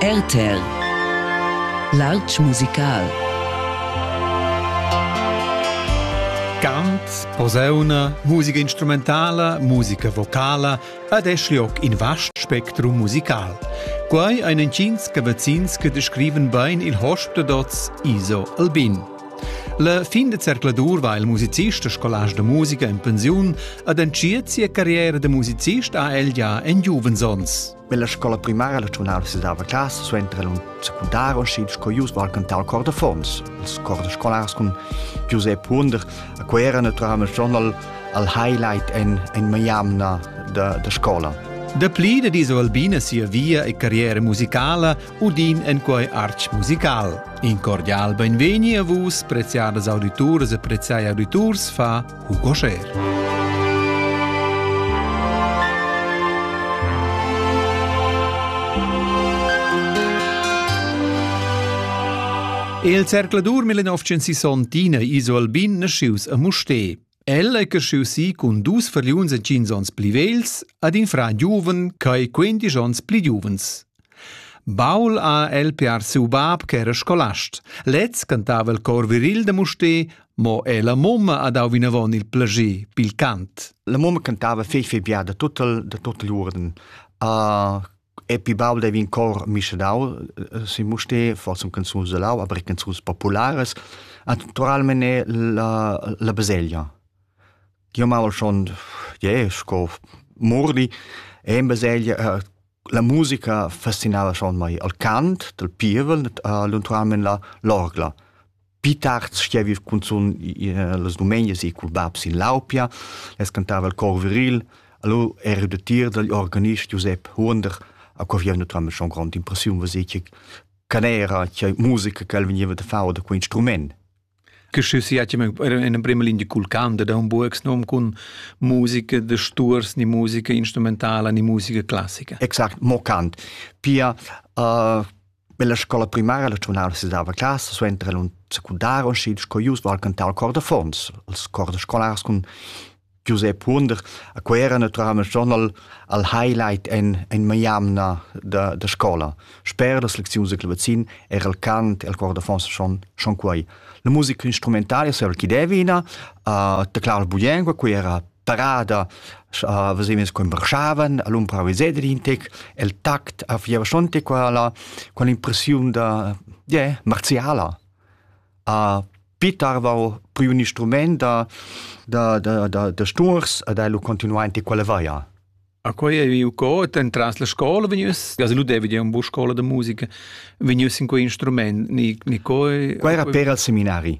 RTL L'altg musical Cant, posauna, musica instrumentala, musica vocala ed es lioc in vast spectrum musical. Quai ein entgins cavazzins che descriven bein il hosp da dots Iso Albin. La fin da zercladur va il musicist e scolast da musica en pensiun ad entschiet sia carriera da musicist ha el ja en giuvens Nella scola primaria la giornala si dava classe suenter la secundaria uscì sco ius al cantar cor de Fons. Els cor de scolars con Giuseppe Hunder a cui era naturalmente journal al highlight en, en Miami da, da scola. Da pli da diso Albina sia via e carriera musicala Udin en quei artg musical. In cordial benvegni a vus, preziadas audituras e preziai auditurs, fa Hugo Scher. Il zercladur 1960 iso albin nascius a Mustè. El ei creschius si cun dus fargliuns e tschient onns pli vegls ad in fran giuven ch'ei quindisch onns pli giuvens. Baul ha el piar siu bab ch'era scolast. Lez cantava il cor viril da Musté, mo è la mumma ha dau vinavon il plager pil cant. La mumma cantava fei fei bia da tuttel, da tuttel uorden. Uh, Epi baul devi in cor mischedau sin Mustér, forse un canzuns de lau, aber canzuns populares. Naturalmente la, la baselgia. Io mal schon, yeah, sco mordi, e in baselgia, la musica fascinava schon mai il cant del pievel, uh, naturalmente la, l'orgla. Pi tard stuevi cunzun las dumenias e cul bab sin Laupia, les cantava il cor viril, allo ero da tir dagl organist Giusep Huonder, a co via naturalmente schon grande impressiun, was ich canera, che musica che el veniva da fare da quel instrument. Che si in prima linea cul canto da un buoxnom con musica de sturs, ni musica instrumentala, ni musica classica. Exakt, mo cant. Pia uh, Per la scola primaria la giuvenala sedava classa suenter el un secundar und schied sco ius val cantar il cor da fons, els cor da scolars cun Giuseppe Wunder, a quei era naturalmente schon al, al highlight en, en maiamna da, da scola. Sper las lecziuns da clavazin era il cant e il cor da fons schon, schon quei. La musica instrumentale saveva chi devina, uh, taclava buien, quei era parada a vesemes quem marchavan al umpravisedr intec el tact a fiavasonte quala qual impressiun da yeah, marziala a pitarvau pri un instrument da da da da, da sturs ad el continuante quale vaia A quei ei viu co entras la scola vegnius, ja lu devi dir un bu scola da musica, vegnius in quei instrument, ni ni coi Qua era per al seminari.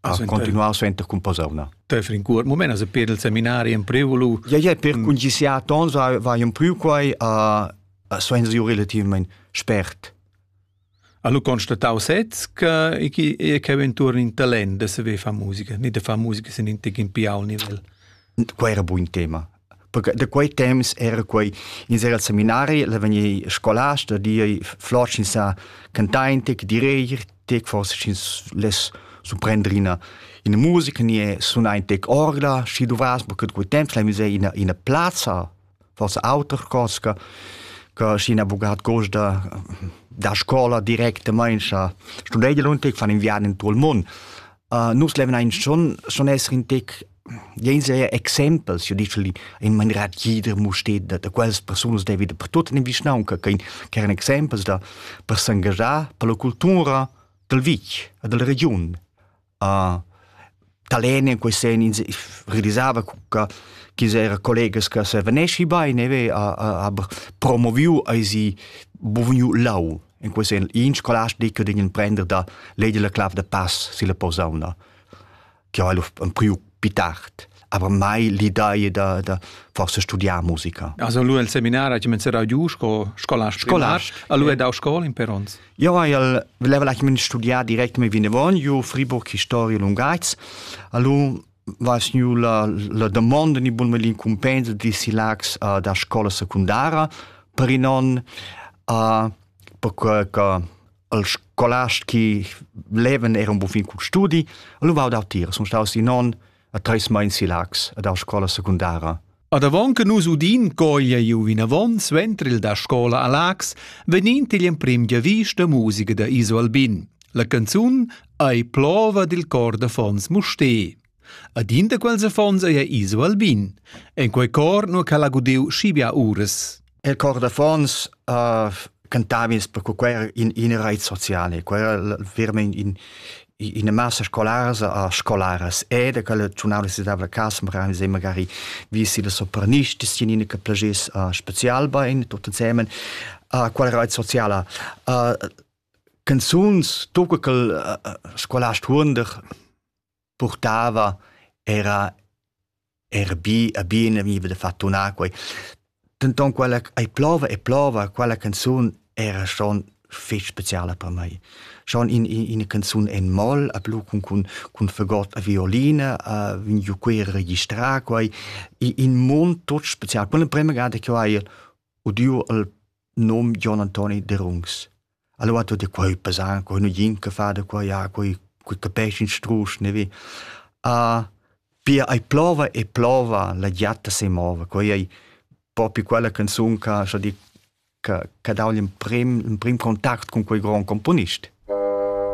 a continuar suenter cun posauna. Töfer in cuort moment as per il seminari in prevolu. Ja ja per kun gi sia tons va in priu quai a senza ju relativament spert. Allo constatau sez che e che ventur in talent da se ve fa musica, ni da fa musica sin in tig in piau nivel. Qua era buon tema. da quei temps era quei in sera al seminari la vegni scolasta di flor sin sa cantain te direir te forse sin les su prendrina in musica ni e suna in tec orgla schi du vas porque quei temps la musei ina ina plaza forse auter cosca che si una bugat costa da scuola directamente studei un tec fan inviato in tutto il mondo uh, nus levna in schon schon essere in tec Jens è exempels, io dici in maniera tgida musteda da quels persunas devi da per tut in vischnaunca che eran exempels da per s'engagiar per la cultura dal vitg e dalla regiun. Uh, Talene in quei sen realisava che chi era collegas che se venesci bene ve aber promoviu eisi buvniu lau in quei sen in scolast di che degn prender da lei la clav da pass si la posauna che ha priu più tard aber mai l'idea da, da forse studiar musica. Also lui al seminar ha comenzato a giù sco scolast scolast. Allora è da scuola in Perons. Io al voleva lasciare studiare direct mi vinevon io Friburg Historia Lungaits. Allora was nu la, la domanda ni bun melin compensa di silax uh, da scola secundara per non uh, per que che al scolast che levan era un buon fin cul studi, allora vau dau tira, sono staus in on a treis meins si Lax ad a scola secundara. Ad avon che nus udin coglia iu vinavon suenter il da scola a Lax, venin igl emprim giavis da musica da Iso Albin. La canzun ei plova dil cor da Fons Musté. Ad in da quels affons ei Iso Albin, en quei cor nur ch'el ha gudiu schi bia uras. Il cor d'affons uh, cantava ins perché quei era in, in reit sociale, quei era veramente in, in massa scolars a scolaras e da quelle giornale si dava la casa magari se magari vi si le sopranisti sinine che plagis uh, special bein tutti insieme uh, quella reit sociale uh, canzuns tu che il uh, scolast Hunder purtava era era bi e bien vegniva da far tunar quei. Denton quella ei plova e plova, quella canzun era schon fetg speciala per mei. Schon in, in, ina canzun en moll, a blu cun, cun, cun fagot a violine, uh, vegn giu quei registrar quei, in mund tot special. Quella prema gada che ho hai udiu al num Jon Antoni Derungs. Allora ha detto, quei pesan, quei nu jin che fa da quei, ja, quei, quei capisci in strusch, ne vi. Uh, pia ai plova e plova, la giatta se mova, quei è proprio quella canzone che, so di, che, che dà l'emprim, l'emprim contact con quei gran componist.